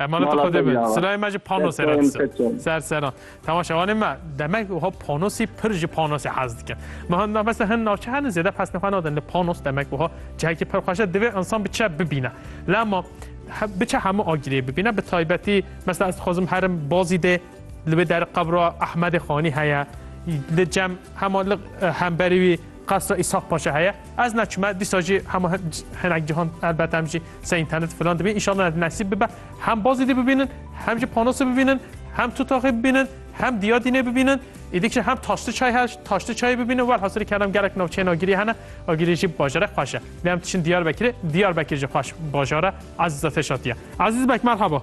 Emanet Mala Xwedê bin. Teyara. Silayê me ji panosê re Desteyên dise. keçin. Ser seran. Tamam şevanê me demek wiha panosî pir ji panosê hez dikin. Me hin na mesela hin navçe henin zêde pesne xwe nadin li panos demek wiha cihekî pir xweş e divê insan biçe bibîne. Lema he- biçe hemû agirê bibîne bi taybetî mesela ez dixwazim herim bazî dê Li vê der qebra Ehmedê Xanî heye. Li cem hema li hemberî wî qesra Îshak Paşa heye. Ez neçime dîsa jî hema hinek cihan elbet em jî se internet filan dibî. İnşallah nesîb bibe. Hem bazî dî bibînin, hem jî panosê bibînin, hem tutaxê bibînin, hem diya dînê bibînin. Îdîkşe hem taştı çay her taştı çayê bibînin. Welhasirî kerem gerek navçeyên agirî hene. Agirî jî bajare xweş e. Lê em diçin Diyarbekirê, Diyarbekir jî xweş bajare. Ezîz Ateş Atiye. Ezîz Bek merhaba.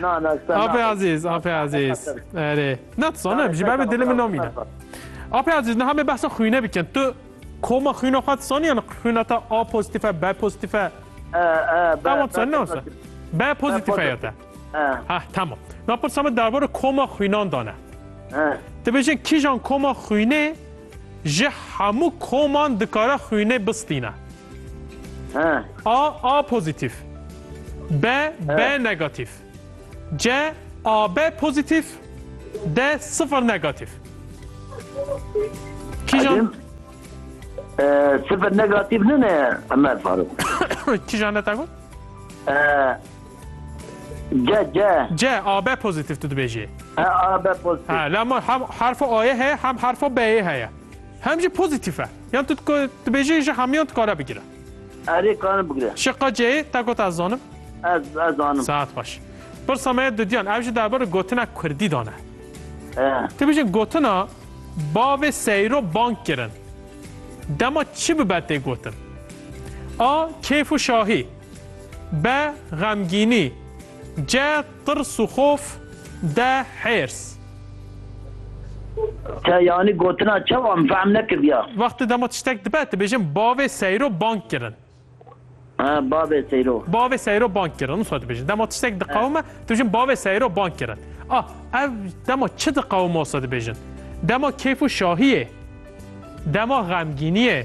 Na na sen. Ape Aziz, Ape Aziz. Ere. Na tu sana ji ber dilim namîne. Ape Aziz ne hame behsa xwîne bikin. Tu koma xwîna xwe saniye ne xwîna ta A pozitife, B pozitife. Tamam sen ne olsa. B pozitife ya te. Ha tamam. Na pırsama derbara koma xwînan dane. Te bêjin kîjan koma xwînê Ji hemû koman dikare xwînê bistîne. He. A A pozîtîf. B B negatîf. C AB pozîtîf. D sifir negatîf. Kîjan Edim. E, Sıfır negatif ne ne Ömer Faruk. kîjan ne te got? E, C C. C AB pozitif tu dibêjê. He AB pozitif. Ha la ma hem harfa A'yê heye hem harfa B'yê heye. Hem jî pozitif e. Yan tu dibêjê ji hemiyan dikare bigire. Erê karin bigire. Şiqa C'yê te got ez zanim. Ez ez zanim. Saet baş. Pirsa me ye dudiyan ev jî derbarê gotina Kurdî dane. Ti bijin gotina bavê seyro bank kirin. Dema çi bibe tê gotin? A keyf û şahî. Be, xemgînî. Ce, tirs û xof. De, hêrs. Te yanî gotina çawa min fehm nekirdiya? Wextê dema tiştek dibe dibêjin bavê seyro bang kirin. Ha, bavê seyro. Bavê seyro bang kirin wisa dibêjin. Dema tiştek diqewime dibêjin bavê seyro bang kirin. A, ev dema çi diqewime wisa dibêjin. Dema keyf û şahiyê. Dema xemgîniyê.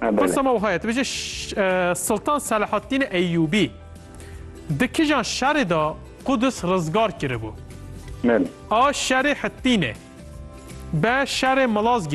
Pırsa me wiha ye, tu bêje Sultan Selahaddîn Eyyûbî di kijan şerê de Qudus rizgar kiribû? A şerê Hittînê, B şerê Milazgîrê.